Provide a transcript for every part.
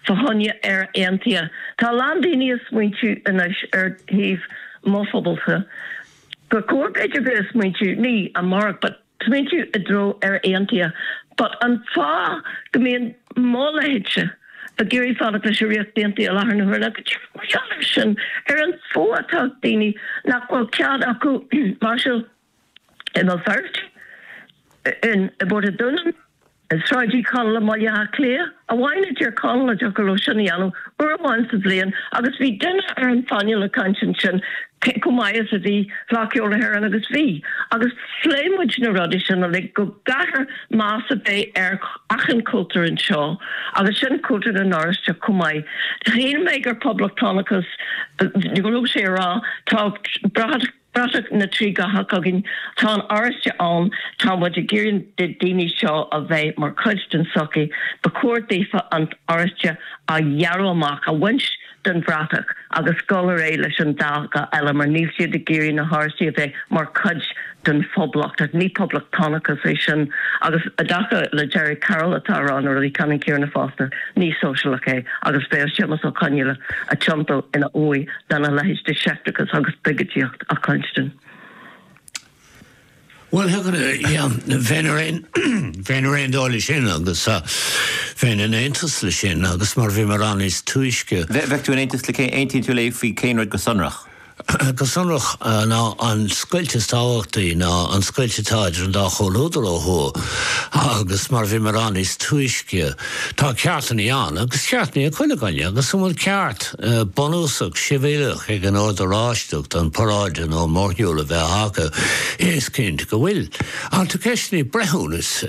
Fá choinne Éire aontaithe, tá a lán daoine ag smaointiú anois ar thaobh mo phobalsa. Gur chóir b'fhéidir bheith ag smaointiú, ní amárach, but smaointiú i dtreo Éire aontaithe. But an fáth go mbíonn mo leithéidse ag iarraidh fanacht leis an Ríocht Aontaithe i láthair na huaire, go díreach mar gheall ar sin, ar an fuath atá ag daoine nach bhfuil cead acu máirseáil in mBéal Feirste, i bPort a' Dúnain, i Sráid Uí Chonaill i mBaile Átha Cliath i nDún na nGall go dtiocfadh leo sin a dhéanamh uair amháin sa bhliain agus bhí duine ar an phainéal ag caint ansin chomh maith is a bhí Fleadh Cheoil na hÉireann agus bhí agus phléigh muid na rudaí sin uilig go gcaithfear meas a bheith ar achan chultúr anseo agus sin cultúr na nOráisteach chomh maith. Shíl mé gur poblachtánachas a bhí sé a rá tá bratach Bratach na dtrí dhath againn. Tá an t-oráiste ann, tá muid ag iarraidh na daoine seo a bheith mar chuid den sochaí, ba chóir daofa an t-oráiste a ghearradh amach, a bhaint den bhratach agus dhul ar aghaidh leis an dá dhath eile mar níl siad ag iarraidh na hOráistigh a bheith mar chuid den Phoblacht. Ní Poblachtánachas é sin agus i dtaca le Gerry Carroll atá ag rá na rudaí ceannann céanna fosta, ní Sóisialach é agus bheadh Séamas Ó Conghaile ag tiontú ina uaigh Dá mbeadh a leithéid de sheicteachas agus de bhiogóideacht le cluinstin. Bhuel thiocfadh le yeah bheinn ar aon bheinn ar aon dul leis sin agus ah bheinn in aontas leis sin agus mar a bhí mé ag rá níos túisce. Bheith bheadh tú in aontas le cé aontaíonn tú léi faoi cén rud go sonrach? Go sonrach ná an scoilt is tábhachtaí ná an scoilt atá idir an dá chomhluadar ó thuaidh agus mar a bhí mé ag rá níos túisce tá ceartanna ann agus ceartanna ag chuile dhuine agus an bhfuil ceart bunúsach sibhialach ag an Ord Oráisteach an paráid nó mórshiúl a bheith acu, is cinnte go bhfuil. Ach tá ceist an bhreithiúnais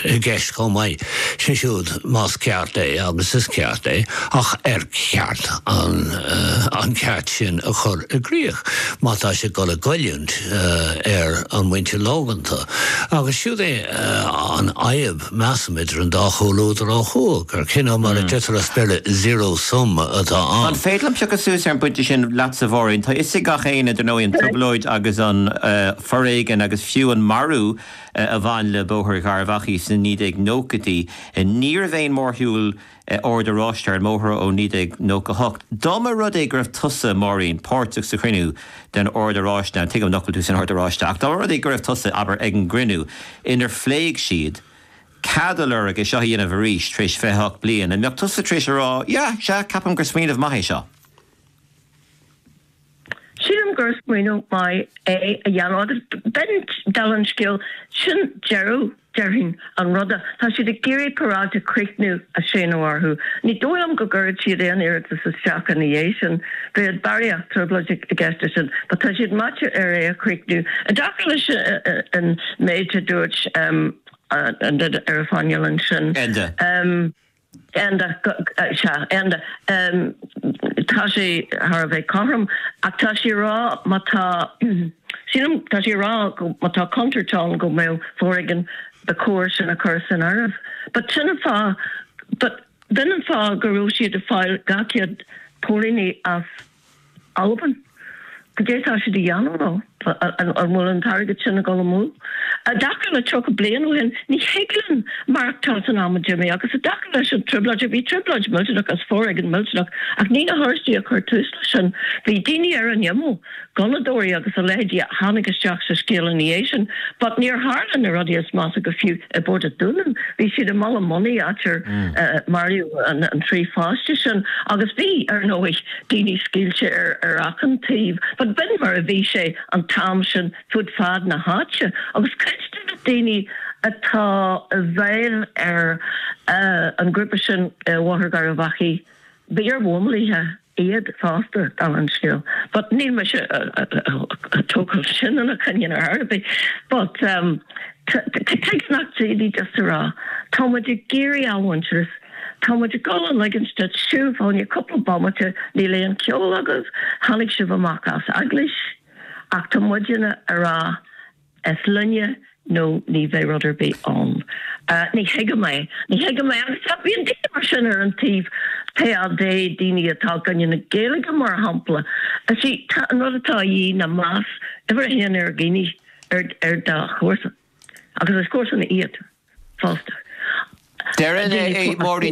i gceist chomh maith, sé siúd más ceart é, agus is ceart é, ach ar cheart an ceart sin a chur i gcrích má tá sé ag dul ag goilliúint ar an mhuintir lóganta? Agus siúd é an fhadhb. Measaim, idir an dá chomhluadar ó thuaidh, gur cineál, mar a deirtear as Béarla, zero sum atá ann. An féidir liom piocadh suas ar an bpointe sin leatsa, a Mháirín? Tá 'fhios ag gach éinne, dar ndóigh, an trioblóid agus an foréigean agus fiú an marú a bhain le Bóthar Gharbh Achaidh sna 1990idí. Ní raibh aon mhórshiúl Oird Oráistigh ar an mbóthar ó 1998. Dá mba rud é go raibh tusa, Máirín, páirteach sa chruinniú den Ord Oráisteach, an tuigim nach bhfuil tú san Ord Oráisteach, ach dá mba rud é go raibh tusa, abair, ag an gcruinniú inar phléigh siad cead a lorg é seo a dhéanamh arís tar éis 28 bliain, an mbeadh tusa tar éis a rá, yeah, sea, ceapaim gur smaoineamh maith é seo? Sílim gur smaoineamh maith é a dhéanamh agus b'in deireadh an scéil, sin deireadh, déarfainn, an ruda. Tá siad ag iarraidh paráid a chríochnú a séanadh orthu. Ní dóigh liom go gcuirfeadh siad aon iarratas isteach ina dhiaidh sin. Bheadh barraíocht trioblóid i gceist ar sin. But tá siad meáite ar é a chríochnú. I dtaca leis an méid a dúirt em ar an phainéal ansin. Enda. Enda, Sea, Enda, tá sé thar a bheith cothrom ach tá sé a rá má tá, sílim, tá sé a rá go má tá contúirt ann go mbeadh foréigean, ba chóir sin a chur san áireamh. But sin an fáth, but b'in an fáth go raibh siad ag fáil dhá chéad póilíní as. Albain. Cad é atá siad a dhéanamh nó an bhfuil an t-airgead sin ag dul amú? I dtaca le tríocha bliain ó shin, ní thig linn maireachtáil san am a d'imigh agus i dtaca leis an trioblóid, bhí trioblóid mhillteanach agus foréigean millteanach ach ní na hOráistigh a chuir tús leis sin. Bhí daoine ar an imeall, gunnadóirí agus a leithéidí a tháinig isteach sa scéal ina dhiaidh sin but níor tharla na rudaí is measa go fiú. i bPort an Dúnáin. Bhí siad i mBaile Monaidh áit ar maraíodh an trí pháiste sin agus bhí, ar ndóigh, daoine scaoilte ar achan taobh but b'in mar a bhí sé an t-am sin fud fad na háite agus cuid de na daoine atá i bhfeighil ar an ghrúpa sin ar Bhóthar Gharbhachaidh b'iarmhíleataigh iad fosta dul an scéal but níl mise ag tógáil sin ina gcoinne ar chor ar bith but tuige nach dtig just a rá tá muid ag iarraidh athmhuintearas, tá muid ag dul a ligint duit siúl fá choinne cúpla bomaite, níl aon cheol agaibh, tháinig sibh amach as eaglais ach tá muidinne a rá, is linne nó ní bheidh rud ar bith ann. Ní thuigim é. Ní thuigim é. Agus bíonn daoine mar sin ar an taobh TÁD, daoine atá i gcoinne na Gaeilge mar shampla. Is é an rud atá a dhíth ná meas, uimhir a haon ar dhaoine, ar do chomharsana. Agus is comharsana iad fosta. Deireann Máirín.